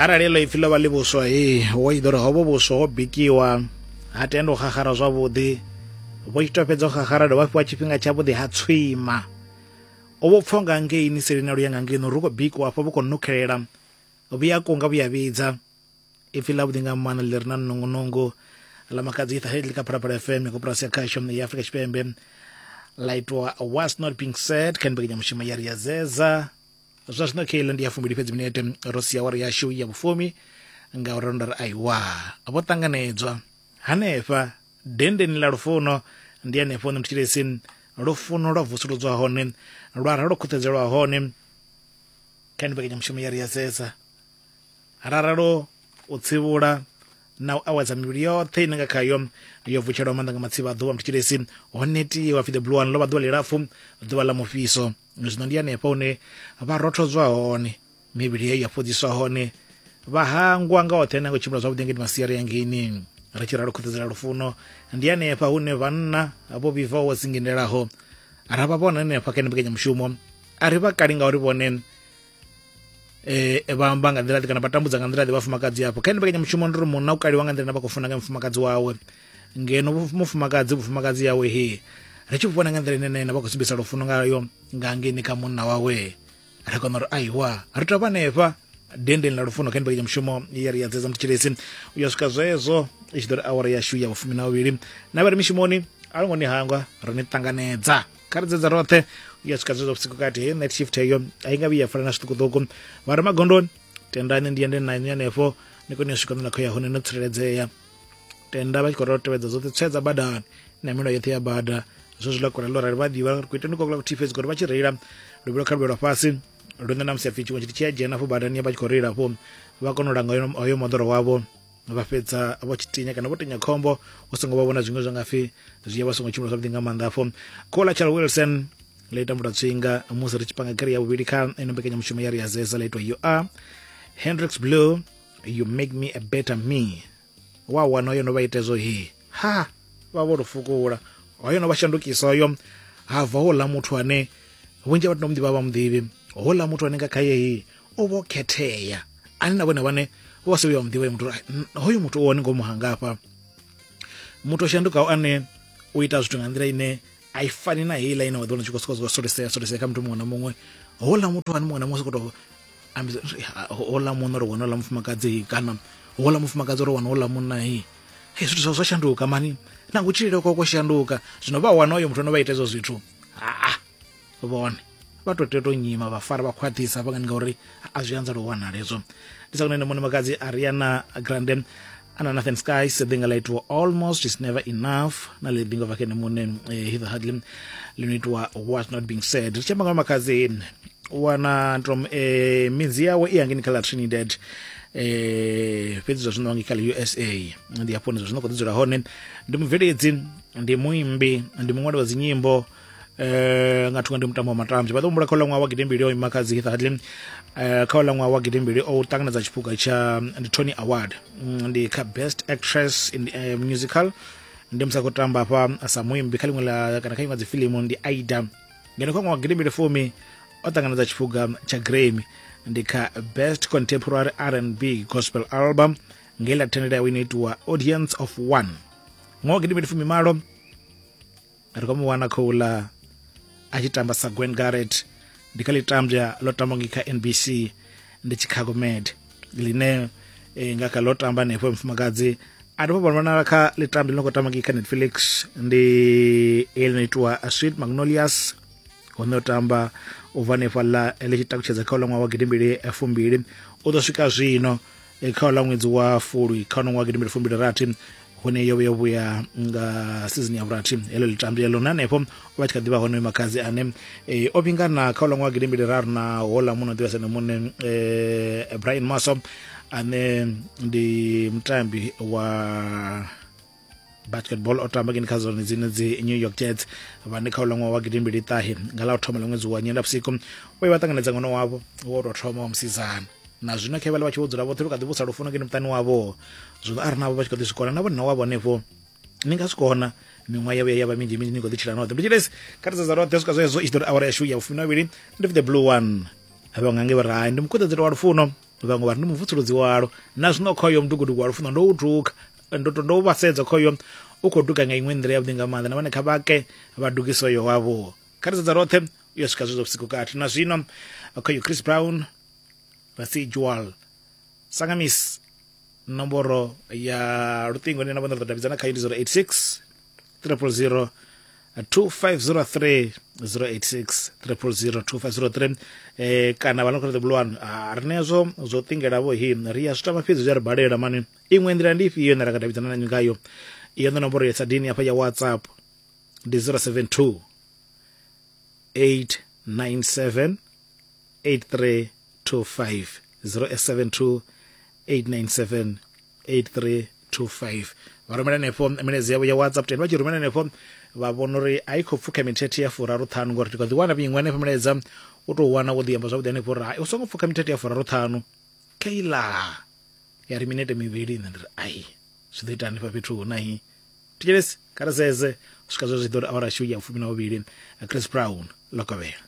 arali ḽo ipfi ḽo vha ḽi vhuswa he wo i ḓori hovho vhuswa ho bikiwa ha tenda u xaxara zwavhuḓi vho tshi to fhedza u xaxara dovha fhiwa tshifhinga tshavhuḓi ha tswima u vho pfha nga ngei ni seli na luya nga ngei no ri khou bikiwa afho vho khou nukhelela vhuya kunga vhuya vhidza ipfi ḽavhuḓi nga maanḓa ḽi re na nungunungu ḽa makadzi itha headli kha phalaphala fm ya koporasi ya khasho ya afrika tshipembe ḽa itwa was not being said kha ni mbekanyamushumo ya ri ya zeza zwa zwino khaile ndi ya fumbili fhedzi minete ro sia wari yashu ya vhufumi nga uri ndo ri aiwa vho ṱanganedzwa hanefha dendeni ḽa lufuno ndi hanefho hune mutshilesi lufuno lwa vusuludzwa hone lwa ra lwo khuṱhedzelwa hone kha ni mbekanyamushumo ya ri ya sesa raralo u tsivhula na u awedza mivhili yoṱhe ine nga khayo yo vutshelwa maanḓa nga matsivha a ḓuvha mutshilesi ho netiwa pfi the blue one ḽo vha ḓuvha ḽilapfu ḓuvha ḽa mufhiso zwino ndi hanefho hune vha rothodzwa hone mivhili yeyo ya fhodziswa hone vha hangwa nga oṱhe na ngo tshimbila zwavhuḓi ngeni masiari ya ngeni ri tshi ralo khuṱudzela lufuno ndi hanefha hune vhanna vho vhibvaho dzingindelaho ra vha vhona hanefha kha ene mbekanyamushumo a ri vha kali ngauri vhone eh vha amba nga nḓila kana vha tambudza nga nḓila ḓe vhafumakadzi afho kha ine mushumo ndi ri munna u kaliwa nga nḓila na vha khou funa nga mufumakadzi wawe ngeno mufumakadzi vhufumakadzi yawe he ri tshi vhona nga nḓila ine na vha khou sumbisa lufuno ngayo nga ngeni kha munna wawe ri kona uri aiwa ri tovha nefha dendeni ḽa lufuno kha ndivhekanya mushumo ye ri ya dzedza mutshilesi u ya swika zwezwo i tshi ḓo ri awara yashu ya vhufumi na vhuvhili na vha ri mishumoni a lo ngo ni hangwa ri ni ṱanganedza kharidza dza roṱhe u ya swika zwezwo vhusiku kati heyo night shift heyo a i nga vhuyi ya fana na zwiṱukuṱuku vha re magondoni tendani ndi yende na hanefho ni kone u swika nḓila khou ya hone no tsireledzea tenda vha tshi khou ri tevhedza dzoṱhe tswe dza badani na milayo yoṱhe ya bada zwo zwi lakora ḽo rali vha ḓivha ri khou ita ndi khou kula vhuthihi fhedzi ngori vha tshi reila luvhilo kha luvhelo fhasi lune na musi a pfi tshiṅwe tshithu tshi a dzhena afho badani vha tshi khou reila afho vha kona u langa hoyo moḓoro wavho vha fhedza vho tshi tinya kana vho tinya khombo u songo vha vhona zwiṅwe zwa nga pfhi zwi ya vha songo tshimbila zwavhuḓi nga maanḓa afho khola charles wilson ḽa ita mbuta tswinga musi ri tshi panga khere ya vhuvhili kha ino mbekanyamushumo ya ri ya zeza ḽa itwa you are hendrix blue you make me a better me wa wana yo no vha ita hezwo he ha vha vho lufukula hoyo no vha shandukisa hoyo ha bva houḽa muthu ane vhunzhi ha vhathu no mu ḓivha vha mu ḓivhi houḽa muthu ane nga khaye he o vho khethea ani na vhone vhane vho se vhuya wa muḓivha muthu hoyu muthu o wone ngomu hangafha muthu o shandukaho ane u ita zwithu nga nḓila ine a i fani na heiḽa ine wa ḓo wana tshi khou sokou solisea solisea kha muthu muṅwe na muṅwe houḽa muthu ani muṅwe na muṅwe sokoto ambisa houḽa munna uri wana houḽa mufumakadzi kana houḽa mufumakadzi uri wana houḽa munna hei hei zwithu zwa zwa shanduka mani na kutshilele kwa kwa shanduka zwino vha wana uyo muthu ono vha ita ezwo zwithu haa vhone vha to tea to nyima vha fara vha khwaṱhisa vha ngani ngauri a zwi anzela u wanala hezwo ndi sa kunene mone makadzi ariana grande ana nathan skies ḓi nga ḽa itiwa almost is never enough na ḽi ḓi nga vha kene mune eh, hither hardly ḽi no itiwa what not being said ri tshi amba nga makadzi wana tom eh, midzi yawe i yangeni kha ḽa trinidad eh fhedzi zwa zwino ngikhala usa ndi hafho ndi zwa zwino khou ḓi dzula hone ndi mubveledzi ndi muimbi ndi muṅwali wa dzinyimbo eh nga thunga ndi mutambo wa matambya vha ḓo humbula kha uḽa ṅwaha wa gidimbili o ima kha dzi heath hadley eh kha uḽa ṅwaha wa gidimbili o ṱanganedza tshiphuga tsha ndi tony award mm, ndi kha best actress in the, eh, musical ndi musi a khou tamba hafha sa muimbi kha ḽiṅwe la kana kha iṅwe dzi filimu ndi aida ngeno kha ṅwaha wa gidimbili fumi o ṱanganedza tshiphuga tsha grammy ndi kha best contemporary rnb gospel album nge ḽa thendela yawe ino itiwa audience of one ṅwaha wa gidimbili fumi malo ri khou mu wana khouḽa a tshi tamba sa gwen garret ndi kha ḽitambya ḽo tamba ngi kha nbc ndi chicago med ḽine eh, nga kha ḽo tamba hanefho mufumakadzi a dovha vhonala kha ḽitambya ḽi no khou tamba ngi kha netfelix ndi ḽi no itiwa sweet magnolias hone o tamba u bva hanefhaḽa ḽi tshi takutshedza kha uḽa ṅwaha wa gidimbili fumbili u ḓo swika zwino e, kha ḽa ṅwedzi wa fulwi kha nongo wa gidimbili fumbili rathi hune yo vha yo vhuya nga sizini ya vhurathi heḽo litambi ḽeḽo na hanefho o vha tshi kha ḓivha hone makhadzi ane e, o vhingana kha ḽa ṅwaha gidimbili raru na hola muno ḓivhesa ne muṋe um e, brian maso ane ndi mutambi wa basketball o tamba kini kha zone dzine dzi new york jets vhane kha uḽa ṅwaha wa gidimbili ṱahe nga ḽa u thoma ḽa ṅwedzi wa nyendavhusiku u ye vha ṱanganedza ṅwana wavho wo tou thoma wa musidzana na zwino khe vhale vha tshi vho dzula vhoṱhe lu kha ḓi vhusa lufuno kini muṱani wavho zwino a ri navho vha tshi kho ḓi zwi kona na vhonna wavho henefho ni nga zwi kona miṅwaha yavho ya vha minzhi minzhi ni kho ḓi tshila noṱhe ndi tshilesi kha ri sedza roṱhe swika zwezwo i tshi ḓo ri awara yashu ya vhufumi na vhavhili ndi the blue one vhaṅwe ange vha ri ndi mukuṱedzelo wa lufuno vhaṅwe vha ri ndi muvutsuludzi walo na zwino khoyo mudugudugu wa lufuno ndo u duka ndo to ndo vha sedza khoyo u khou duga nga iṅwe nḓila yavhuḓi nga maanḓa na vhone kha vhake vha dugise uyo wavho kha ri sedza roṱhe u ya swika zwezwo vhusiku kathi na zwino khoyo chris brown residual sangamis nomboro ya luṱingo ine na vhone ri ḓo davhidzana khayo ndi 086 000 2503 086 000 2503 eh kana vha no kho ṱoḓa bulwani a ri ne zwo zwo ṱingelavho hi ri ya zwi tama fhedzi zwi a ri balela mani iṅwe nḓila ndi ifhio ine ra nga davhidzana nanyu ngayo iyo ndo nomboro ya sadini hafha ya whatsapp ndi 072 897 8325 072 897 8325 vha rumela henefho milaedza yavho ya whatsapp teni vha tshi rumela henefho vha vhona uri a i khou pfuka mithethe ya furaru ṱhanu ngori ndi kha ḓi wana vhiṅwe henefho milaedza u tou wana wo ḓi amba zwavhuḓi henefho uri hai u songo pfuka mithethe ya furaru ṱhanu keila ya ri minete mivhili nṋe ndi ri ai zwi ḓo ita hanefha fhethu hu na hi thetshelesi kha ri sedze u swika zwa zwi ḓo ri awara shiu ya fumi na vhuvhili chris brown lokovhela